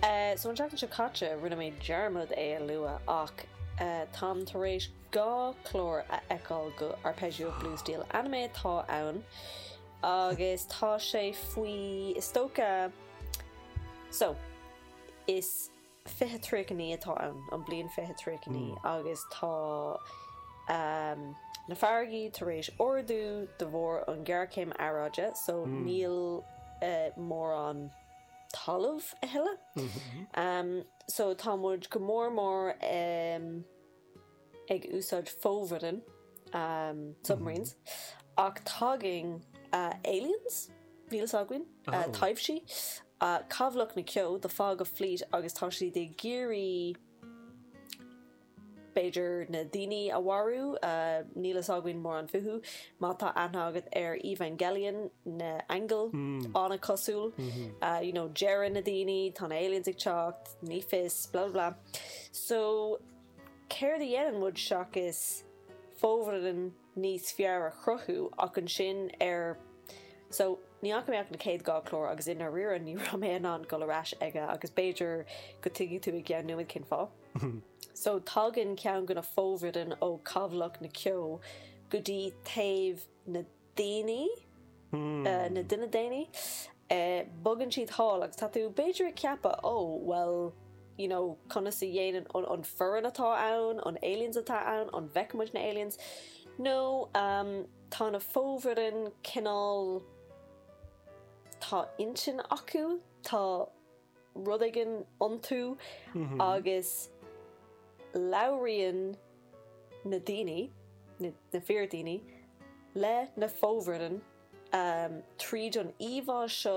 Sa tseachtain seo caite rinne mé dearmad é a lua ach táim tar éis dhá chlár a fheiceáil de Arpeggio of Blue Steel, anime atá ann agus tá sé faoi is dócha so is fiche tríocha naoi atá ann, an bhliain fiche tríocha naoi, agus tá na farraigí tar éis ardú de bharr an ghéarchéim aeráide, so níl mórán talamh a thuilleadh. So tá muid go mór mór i. ag úsáid fomhuireán, submarines, ach tagann aliens, níl fhios againn, taibhsí, cabhlach na ceo, the fog of fleet, agus tá siad ag iarraidh, b'fhéidir na daoine a mharú, níl fhios againn mórán fúthu, má tá aithne agat ar Evangelion, na aingil, an-chosúil, you know, deireann na daoine tá na aliens ag teacht, ní fios, blah blah blah. So, céard a dhéanann muid seachas fomhuireán níos fearr a chruthú ach ansin ar So, ní fhaca mé ach na chéad dhá chlár agus i ndáiríre ní raibh mé in ann dul ar ais aige agus b'fhéidir go dtuigfidh tú i gceann nóiméad cén fáth. So, tagann ceann de na fomhuireán ó cabhlach na ceo go dtí taobh na. daoine, na duine daonna, bogann siad thall agus tá tú b'fhéidir ag ceapadh ó bhuel you know conas a dhéanann an foireann atá ann, an aliens atá ann, an bhfeiceann muid na aliens, no tá na fomhuireáin cineál tá intinn acu, tá. rud éigin iontu agus labhraíonn na daoine, na fíor daoine, le na fomhuireáin tríd an íomhá seo.